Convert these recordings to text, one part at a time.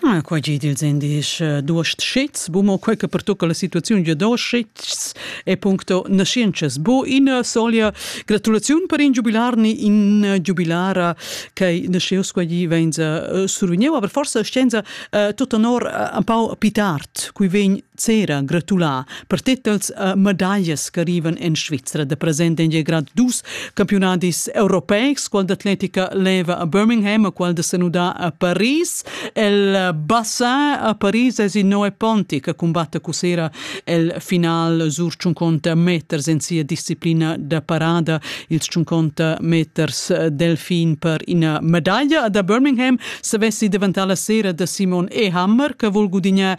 Ah, quei gi dils indies eh, duost schits, bu mo quei che pertucca la situaziun gia duost schits e puncto nascienças. Bu in eh, solia gratulaziun per in giubilarni in eh, giubilara che nasceus quei gi venza survigniu, aber forse scienza tut honor un pau pitart, cui vegn cera gratulà Per titels e medaglias ch'arrivan en Svizra da present en il grad 2 campiunadis europeics, qual d'atletica leva a Birmingham e qual da senudà a Paris. El bassin a Paris es il Noe Ponti che combatte cusera el final sur 50 meters en sia disciplina da parada, ils 50 meters delfin per ina medaglia. Da Birmingham se vessi davantar la sera da Simon Ehammer che vol gudignar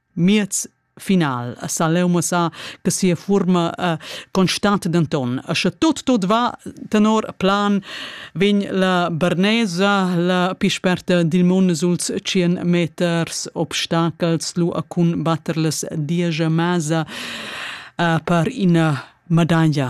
Miez final a sa leu mussar che sia fuorma uh, constata denton e sche tut tut va tenor plan vegn la Bernesa la pi sperta dil mund suls 100 meters obstacels lu a cun batter las diesch masa uh, per ina medaglia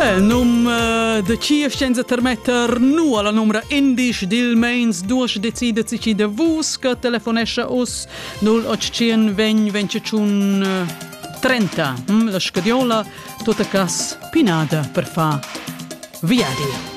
El num uh, de Cief senza termetter nu alla numra indisch dil meins duas decidet si de vus che telefonescha us 0800 20 25 30 mm, la scadiola tota cas pinada per fa viadi.